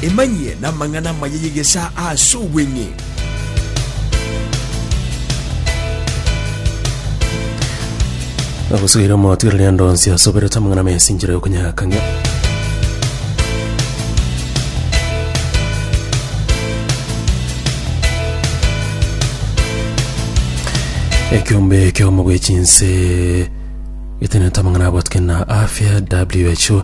Emanyie namang'ana amaya y'egesaa aase obweng'e. Agosugira omotu ere rende onsi asoberete amang'ana ama esinchera y'okonyakang'ia. Ekiombe ekiomo bw'echinse getenete amang'ana abwatwe na afya who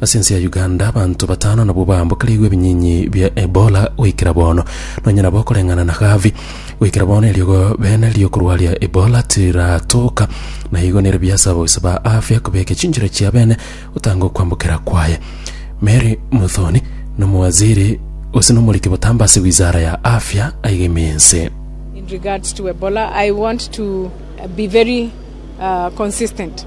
Ase ense ya Uganda abanto batano nabwo baambokereigwe ebinyinyi bia Ebola goikera bono. Nonye nabo koreng'ana na Gavi, goikera bono eriogo bene riokorwaria Ebola tiratoka, na igo nere biasaba oise ba afya kobeke chinchera chia bene gotanga okwambokera kwaye. Mary Muthoni nomowaziri gose nomoriki botambe ase wizara ya afya aiga ime ense. In regards to Ebola, I want to be very uh, consistent.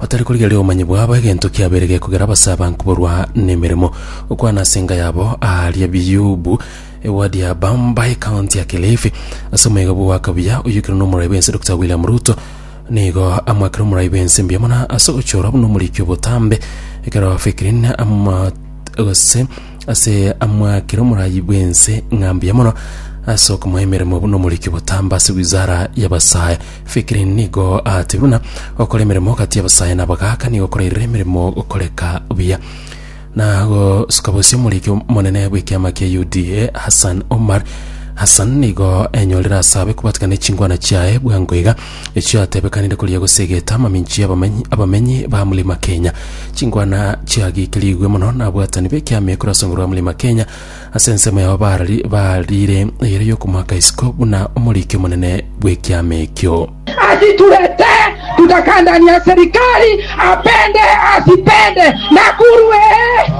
Batari korigereria obomanyi bwabo egento kiabeire gekogera abasaaban koborwa nemeremo. Gokwana ase enga yabo aaria biyubu, ewadi ya Bamba, ekaonti ya Kilifi. Ase omwega bwo goaka buya oyoikerwe nomorai bwense Dokita William Ruto nigo amwakire omorai bwense mbuya mono ase ogochorwa buna omoriki obotambe ekero Fikirin ama gose ase amwakire omorai bwense ng'a mbuya mono ase okomoa emeremo buna omoriki obotambe ase wizara y'abasae Fikiri nigo aatebie buna gokora emeremo gati y'abasae na abagaaka nigo korairire emeremo gokoreka buya. Na gosuka bosie omoriki omonene bw'ekiama kia UDA Hassan Omar Hassan nigo enyorire ase abe kobwatikana ne chingwana chiaye bwango iga echio atebekanire koria gose egeta amaminchi y'abamenyi abamenyi ba Mlima Kenya. Chingwana chiagikirigwe mono na abwatani b'ekiama ekero ase nguru ya Mlima Kenya Ase ensemo yao barari bariire eyere y'okomoaka isiko buna omoriki omonene bw'ekiama ekio. Asitulete tutakandania serikali apende asipende Nakuru ee.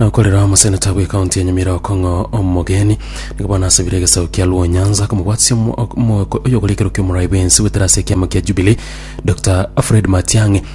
Nokorera omoseneta bwe county ya Nyamira Okong'o omogeni nigo bono asabire egesaku kia Luo Nyanza komobwatisia omo- ok- omo- oyogoriekerwa kia omorai bwensi goetera ase ekiama kia Jubilee Dr Fred Matiang'i